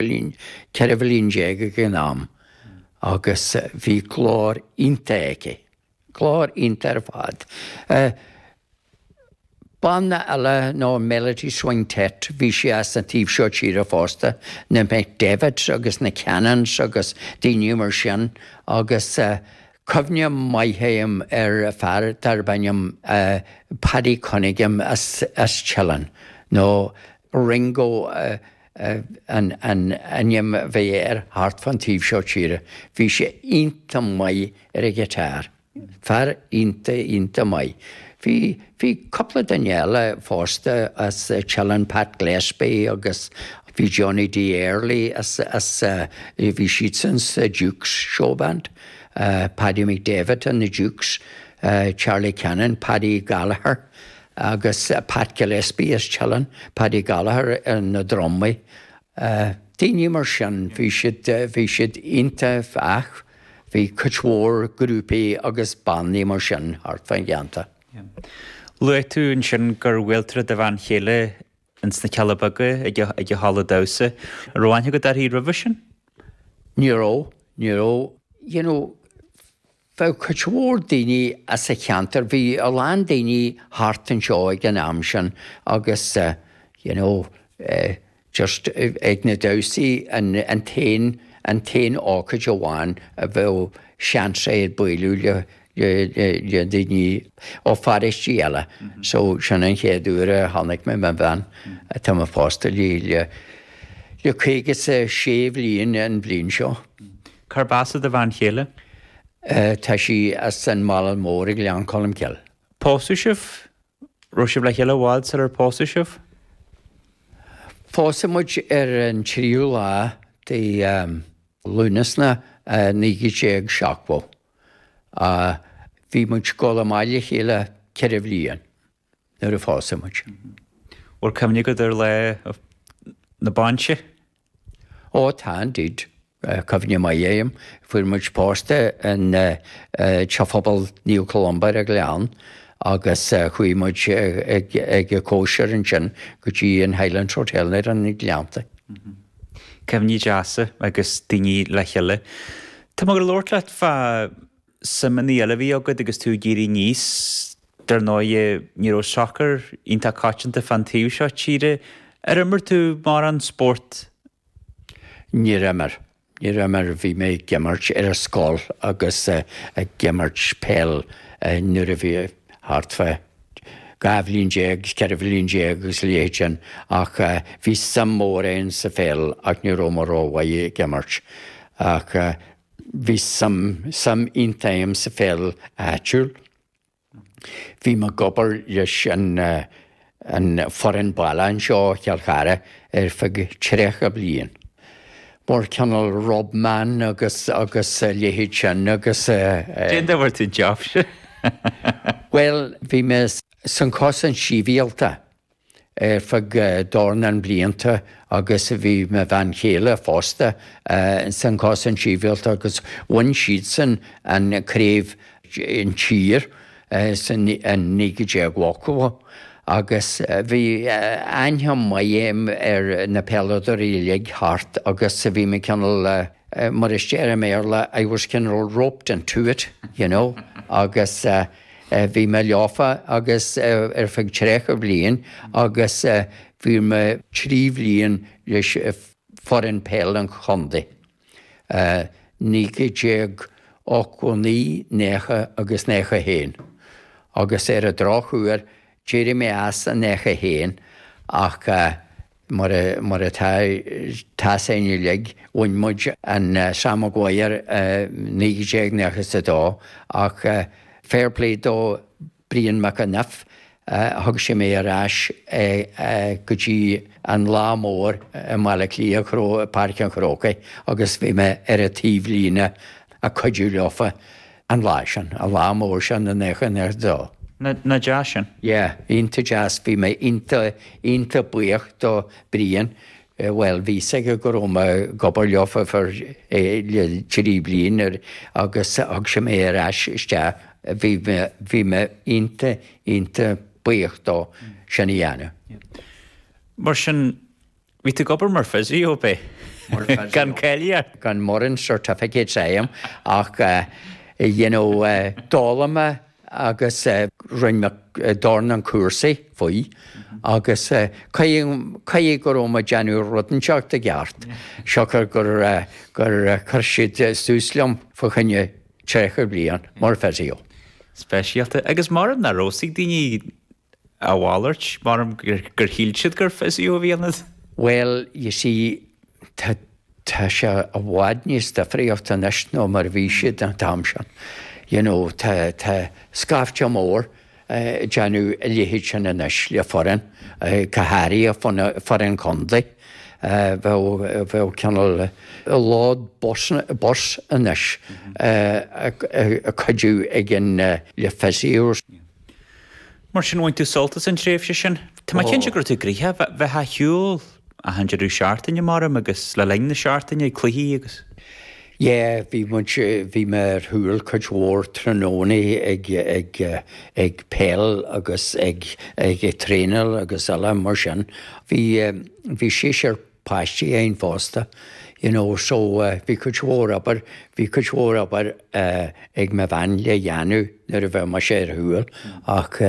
bhliain, ceithre bhliain déag ag an am agus bhí glór iontach aici, glór iontach ar fad. Banna eile ná Melody Swingtet, bhí sí as an taobh seo tíre fosta, na McDevitts agus na Cannons agus daoine mar sin agus cuimhne maith a'm ar fear darb ainm Paddy Cunningham as Teileann nó Ringo, an ainm a bhí air, thart fán taobh seo tíre. Bhí sé iontach maith ar an ghiotáir. Fear iontach, iontach maith. Bhí, bhí cupla duine eile fosta as Teileann, Pat Gillespie agus bhí Johnny Dee Early as, as, bhí siadsan sa Dukes Showband, Paddy McDevitt and the Dukes, Charlie Cannon, Paddy Gallagher, agus Pat Gillespie as Teileann, Paddy Gallagher ar na drumaí, daoine mar sin. Bhí siad, bhí siad iontach ach bhí cuid mhór grúpaí agus bannaí mar sin thart fán gceantar. Luaigh tú ansin gur bhuail tú le do bhean chéile ins na Cealla Beaga ag a, ag a halla damhsa. An raibh aithne agat uirthi roimhe sin? Ní raibh, ní raibh. You know, bheadh cuid mhór daoine as an cheantar, bhí a lán daoine thart anseo ag an am sin agus you know just ag na damhsaí an t-aon, an t-aon ócáid amháin a bheadh seans agat bualadh le, le daoine ó pharóistí eile so sin an chéad uair a chonaic mé mo bhean atá mé pósta léi le, le caoga 's a sé bhliain an bhliain seo. Cárb as do bhean chéile? Tá sí as an Mhálainn Mhór i nGleann Cholmcille. Pósadh sibh? Raibh sibh le chéile i bhfad sular pósadh sibh? Phósadh muid ar an tríú lá de Lúnasna 1970. Bhí muid ag dul amach le chéile ceithre bhliain. nuair a phósadh muid. Bhfuil cuimhne agat ar lá na bainse? Ó tá indeed. Cuimhne maith a'm. Fuair muid pósta in Teach Phobail Naomh Columba ar an Ghleann agus chuaigh muid ag cóisir ansin go dtí an Highlands Hotel ar na Gleannta. Cuimhní deasa agus daoine le chéile. Tá mé ag labhairt leat fá suimeanna eile a bhí agat agus tú ag éirí aníos. Dar ndóigh, ní raibh sacar iontach coitianta fán taobh seo tíre. Ar imir tú mórán spóirt? Níor imir. Níor imir. Bhí mé ag imirt ar an scoil agus ag imirt peil nuair a bhí mé thart fá dhá bhliain déag agus ceithre bhliain déag agus a leithéid sin ach bhí suim mhór agam sa pheil ach ní raibh mé rómhaith ag imirt. Ach. Bhí suim iontach agam sa pheil áitiúil. Bhí mé ag obair leis an foireann baile anseo i gCill Chartha ar feadh tríocha bliain, mar cineál rub man agus a leithéid sin agus. Cén dóigh a bhfuair tú an job sin? Bhuel, bhí mé sa Chosaint Shibhialta ar feadh dornán blianta agus bhí mo bhean chéile fosta sa Chosaint Shibhialta agus bhain siadsan an Craobh in Tír sa 1980 agus bhí aithne mhaith agam ar na peileadóirí uilig thart agus bhí mé cineál, mar a déarfá i mBéarla, I was kinda roped into it, you know, agus. Bhí mé leofa agus ar feadh tríocha bliain agus bhí mé trí bhliain leis foireann peile an chontae, 1989, 90 agus 91, agus ar an drochuair d'éirigh mé as i 91 ach mar atá a fhios againn uilig, bhain muid an Sam Maguire i 1992 ach fair play do Brian McEniff, thug sé mé ar ais go dtí an lá mór i mBaile Átha Cliath, Páirc an Chrócaigh agus bhí mé ar an taobhlíne ag cuidiú leofa. An lá sin. An lá mór sin i nócha dó. Nach deas sin? Yeah, iontach deas. Bhí mé iontach, iontach buíoch do Brian. Bhuel, bhí a fhios aige go raibh mé ag obair leofa ar feadh trí bhliain agus thug sé mé ar ais isteach. Bhí mé, bhí mé iontach, iontach buíoch dó sin a dhéanamh. Mar sin, Bhí tú ag obair mar physio, b'é? Mar physio. Gan cáilíocht? Gan mórán certificates a'm ach you know d'fhoghlaim mé agus rinne mé dornán cúrsaí faoi agus caithfidh go raibh mé ag déanamh rud inteacht i gceart siocair gur chuir siad suas liom fá choinne tríocha bliain mar physio. Speisialta. Agus mara n-aireosaidh daoine. A mhalairt, maram, gur shíl siad gur fiosú a bhí ionat. Bhuel, you see, tá, tá sé i bhfad níos difríocht anois ná mar a bhí siad an t-am sin. You know, tá, tá scaifte mór ag déanamh a leithéid sin anois le foireann, go háirithe foireann contae. Bheadh, bheadh cineál lód bus, bus anois ag cuidiú ag an, le physio. Mar sin, bhain tú sult as an tréimhse sin. Tá mé cinnte go raibh tú gnoitheach, bheifeá ar shiúl achan deireadh seachtaine, maram, agus le linn na seachtaine, cluichí agus. Yeah, bhí muid, bhí mé ar shiúl cuid mhór tráthnónaí ag, ag, ag peil agus ag, ag traenáil agus eile mar sin. Bhí, bhí seisear páistí againn fosta, you know, so bhí cuid mhór obair, bhí cuid mhór obair ag mo bhean le dhéanamh nuair a bheadh mise ar shiúl ach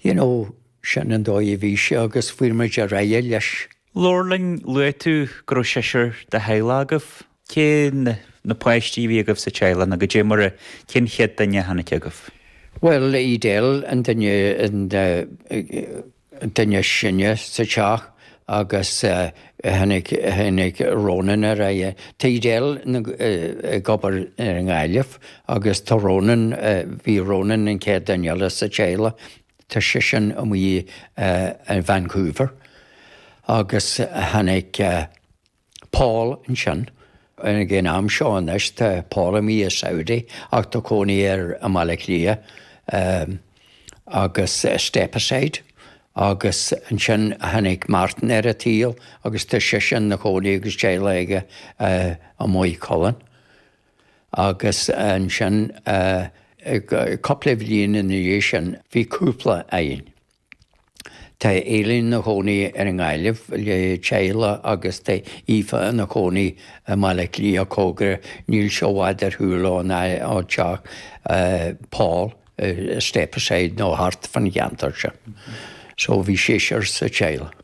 you know sin an dóigh a bhí sé agus fuair muid ar aghaidh leis. Labhair linn, luaigh tú go raibh seisear de theaghlach agaibh, cé na páistí a bhí agaibh sa teaghlach nó cad é mar a, cén chéad duine a tháinig agaibh? Bhuel Edel an duine, an. duine is sine sa teach agus tháinig, tháinig Ronan ar aghaidh. Tá Edel ag obair i nGaillimh agus tá Ronan, bhí Ronan an chéad duine eile sa teaghlach, tá seisean amuigh i Vancouver agus tháinig. Paul ansin. Ag an am seo anois tá Paul amuigh i Saudi ach tá cónaí air i mBaile Átha Cliath. Agus Stepaside agus ansin tháinig Martin ar an tsaol agus tá seisean ina chónaí agus teaghlach aige i Maigh Cuilinn. Agus ansin cúpla bhliain ina dhiaidh sin bhí cúpla againn. Tá Eileen ina chónaí air i nGaillimh le teaghlach agus tá Aoife ina cónaí i mBaile Átha Cliath cóngarach. Níl sé i bhfad ar shiúl ón teach Paul i Stepaside nó thart fan cheantar seo. So bhí seisear sa teaghlach.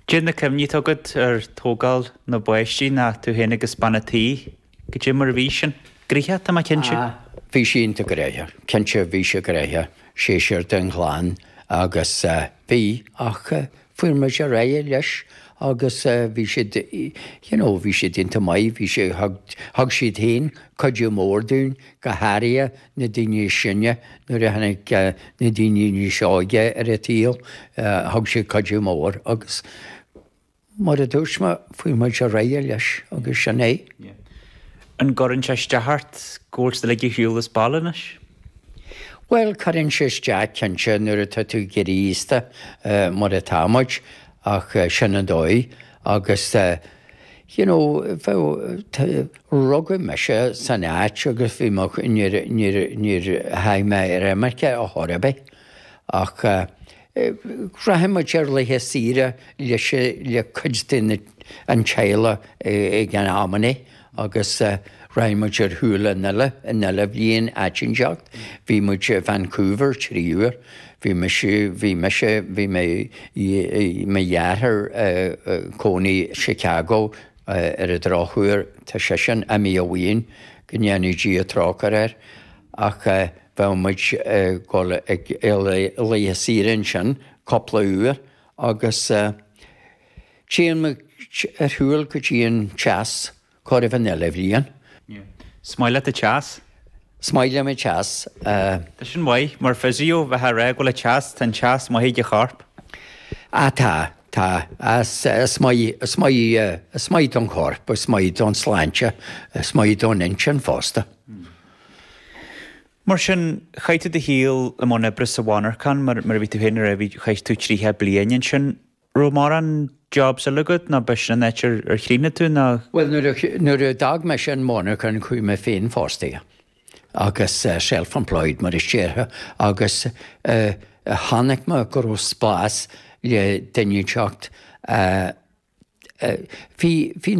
Cad é na cuimhní atá agat ar tógáil na bpáistí nó tú féin agus bean an tí? Cad é mar a bhí sin. Gnoitheach, tá mé cinnte. Ah, bhí sé iontach gnoitheach. Cinnte, bhí sé gnoitheach, seisear de chlann agus bhí, ach fuair muid ar aghaidh leis agus bhí siad, you know, bhí siad iontach maith, bhí siad, thug, thug siad féin cuidiú mór dúinn, go háirithe na daoine is sine, nuair a tháinig na daoine níos óige ar an tsaol, thug siad cuidiú mór agus. Mar a dúirt mé, chuaigh muid ar aghaidh leis agus sin é. An gcuireann sé isteach ort go bhfuil siad uilig ar shiúl as baile anois? Bhuel, cuireann sé isteach, cinnte, nuair atá tú ag éirí aosta, mar atá muid, ach sin an dóigh agus, you know, bheadh, rugadh mise san áit agus bhí mo, níor, níor, níor chuaigh mé ar imirce a chor ar bith ach. Rachadh muid ar laetha saoire le cuid den teaghlach ag an am sin agus rachadh muid ar shiúl achan uile bhliain áit inteacht. Bhí muid i Vancouver trí uair, bhí mise, bhí mise, bhí mé, mo dheartháir ina chónaí i Chicago ar an drochuair, tá seisean imithe uainn, go ndéanaí Dia trócaire air. Ach bheadh muid ag dul ar laetha saoire ansin cúpla uair agus téann muid ar shiúl go dtí an teas chóir a bheith achan uile bhliain. Is maith leat an teas? Is maith liom an teas. Tá sin maith. Mar physio, bheinn ag rá go bhfuil an teas, tá an teas maith ag an chorp. Ah tá, tá. Is maith, is maith, is maith don chorp, is maith don tsláinte, is maith don intinn fosta. Mar sin, chaith tú do shaol i mbun oibre sa mhonarchan, mar a bhí tú féin a rá, chaith tú tríocha bliain ansin. An raibh mórán jobs eile agat nó b'shin an áit ar chríochnaigh tú nó...? Bhuel, nuair a d'fhág mise an mhonarchan chuaigh mé féinfhostaithe, agus self-employed mar a déarfá, agus chonaic mé go raibh spás le duine inteacht, bhí na.